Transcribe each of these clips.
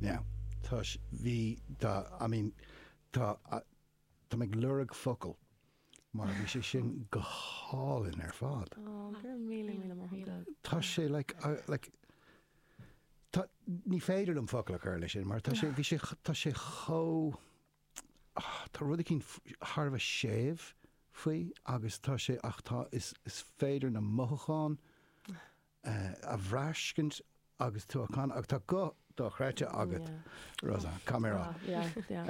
Now, tá s- bhí, tá, I mean, tá, a- táim ag lorg focal mar bhí sé sin go hálainn ar fad. Ó, go raibh míle, míle maith agat. Tá sé, like, I, like, tá, ní féidir liom focal a chur leis sin mar tá sé, bhí sé, tá sé chomh, ah, tá rud eicínt f- thar a bheith séimh faoi agus tá sé, ach tá, is, is féidir na mothúcháin a bhraiscint agus tú á chanadh agus tá guth dochreidte agat, Rosanna, come here on. Yeah,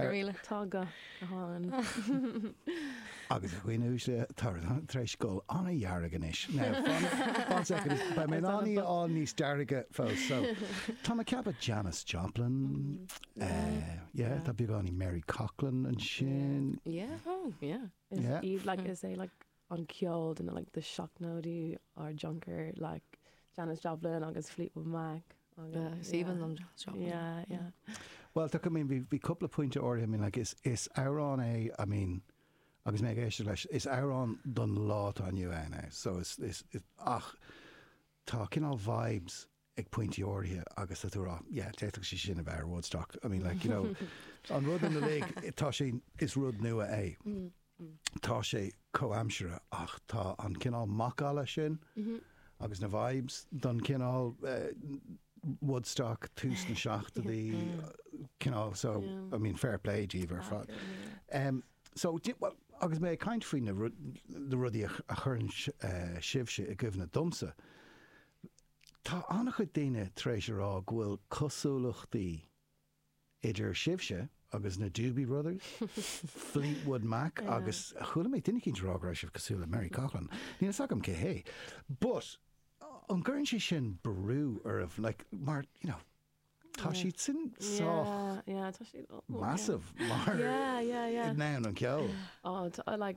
really. Tá guth go hálainn. Agus a dhaoine uaisle, tá Rosanna tar éis dul an-dearg anois. One second, beidh mé in ann í a fháil níos dearga fós. So, tá mé ag ceapadh Janis Joplin, yeah, tá beagáinín Mary Coughlan ansin. Yeah, oh, yeah. Is í, like, is é, like, an ceol de na like the seachtóidí ár dtionchar like Janis Joplin agus Fleetwood Mac agus yeah Even them Janis Joplin yeah yeah. Bhuel tá, I mean bhí bhí cúpla pointe áirithe, I mean like is is amhrán é, I mean agus mé ag éisteacht leis, is amhrán don lá atá inniu ann é so is is ach tá cineál vibes ag pointí áirithe agus tú ag rá yeah, d'fhéadfadh sé sin a bheith ar Woodstock. I mean, like, you know, an rud ina lig, tá sé, is rud nua é. Tá sé comhaimseartha ach tá an cineál macalla sin agus na vibes don cineál Woodstock tús na seachtóidí cineál, so, I mean, fair play daoibh ar fad. So, well, agus mé ag caint faoi na rudaí a chuireann sibhse i gcuimhne domsa, Tá an-chuid daoine tar éis a rá go bhfuil cosúlachtaí idir sibhse agus na Doobie Brothers, Fleetwood Mac agus chuala mé duine eicínt a rá go raibh sibh cosúil le Mary Coughlan. Níl fhios agam cé hé. But, an gcuireann sé sin brú oraibh, like, mar, you know, tá siad sin sách Yeah, yeah, tá siad. oh, oh, Massive, mar yeah, yeah, yeah. in ann an ceol. Oh, t- I like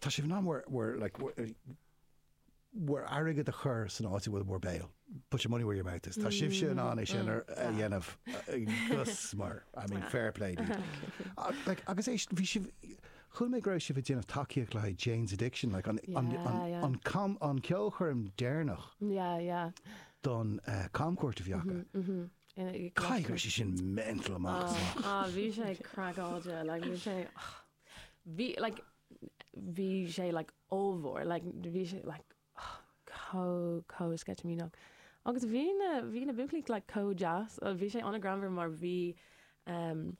Tá sibh in ann bhur, bhur, like, bhur, bhur airgead a chur san áit a bhfuil bhur béal, put your money where your mouth is. Tá sibhse in ann é sin ar, a dhéanamh, agus mar, I mean, fair play daoibh. Ach, like, agus é, bhí sibh, chuala mé go raibh sibh ag déanamh tacaíocht le haghaidh Jane's Addiction, like, an, an, an, Yeah, yeah. an cam, an ceolchoirm deireanach Yeah, yeah. don, eh, camchuairt a bhí acu. In a- Caithfidh go raibh sé sin mental amach is amach. Ah, bhí sé craiceáilte, like, bhí sé, Bhí, like, bhí sé, like, ollmhór, like, bhí sé, like, oh, comh, comh sceitimíneach. Agus bhí na, bhí na buachaillí, like, comh deas. Bhuel, bhí sé an-ghreannmhar mar bhí, um,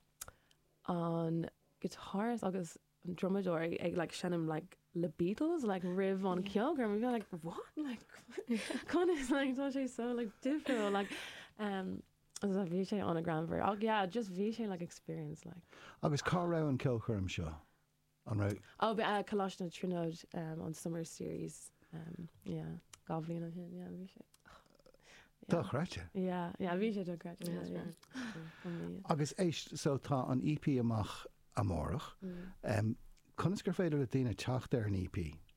an guitarist agus an drumadóir ag, ag, like, seinm, like, leis na Beatles, like, roimh an cheolchoirm. Bhí mé, like, what? Like, conas, like, tá sé so, like, difriúil, like, um, So bhí sé an-greannmhar. Ach yeah, just bhí sé like experience like. Agus cá raibh an ceolchoirm seo? An raibh. Oh, bhí eh, Coláiste na Tríonóide, eh, an summer series, eh, yeah, dhá bhliain ó shin, yeah, bhí sé, yeah. Dochreidte. Yeah, yeah, bhí sé dochreidte, yeah, yeah, yeah, amazing. Agus éist, so tá an EP amach amárach. Em, conas gur féidir le daoine teacht ar an EP?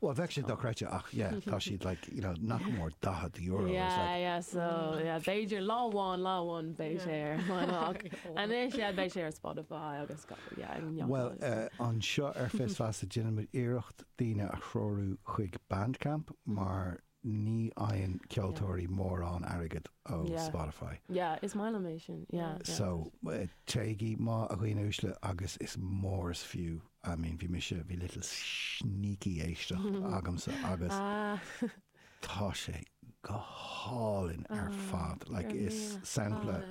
Well beidh sé dochreidte ach yeah tá siad like you know nach mór €40 is Yeah, like yeah, so, yeah, b'fhéidir lá amháin, lá amháin beidh sé ar an ach anois, yeah, beidh sé ar Spotify agus go, yeah, ag neochadh Well agus eh, anseo ar Fios Feasa déanaimid iarracht daoine a threorú chuig Bandcamp mar Ní fhaigheann ceoltóirí mórán airgead ó Spotify. Yeah, is maith liom é sin. Yeah, yeah. So, téigí, a dhaoine uaisle, agus is mór is fiú, I mean, bhí mise, bhí little sneaky éisteacht agamsa agus tá sé go hálainn ar fad. Like, is sampla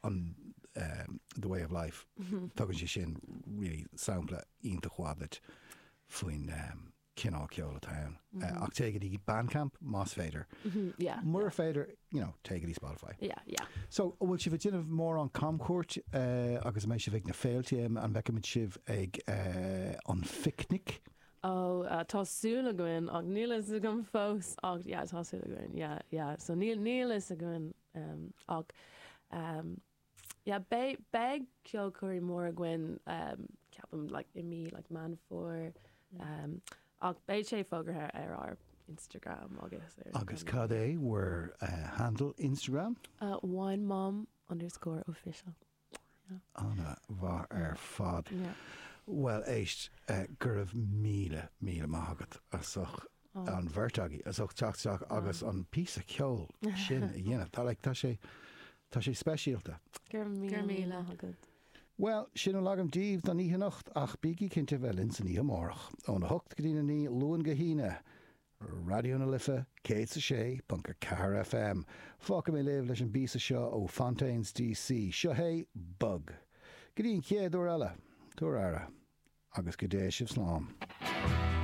an The Way of Life, tugann sé sin really sampla iontach mhaith duit faoin cineál ceoil atá ann. Ach téigh go dtí Bandcamp, más féidir. Mura féidir, you know, téigh go dtí Spotify. So, an bhfuil sibh ag déanamh mórán camchuairt agus an mbeidh sibh ag na féilte? An bhfeicfimid sibh ag an phicnic? Oh, tá súil againn, ach níl a fhios agam fós. Ach yeah, tá súil againn, yeah, yeah. So níl, níl a fhios againn, ach. Yeah beidh beidh ceolchoirm mhór againn ceapaim like i mí like Meán Fómhair ach beidh sé fógartha ar ár Instagram agus ar. Agus cad é bhur handle Instagram? Wine Mom underscore official yeah. Ana-mhaith ar fad. Yeah. Bhuel éist, go raibh míle míle maith agat as ucht an bheirt agaibh as ucht teacht isteach agus an píosa ceoil sin a dhéanamh. Tá like, tá sé tá sé speisialta. Go raibh míle, go raibh míle agat. Bhuel, sin a bhfuil agam daoibh don oíche anocht ach bígí cinnte bheith linn san oíche amárach, óna hocht go dtí na naoi, Luan go hAoine, Raidió na Life 106.4 FM. Fágfaidh mé sibh leis an bpíosa seo ó Fontaines D.C. Seo hé Bug. Go dtí an chéad uair eile, tabhair aire agus go dté sibh slán.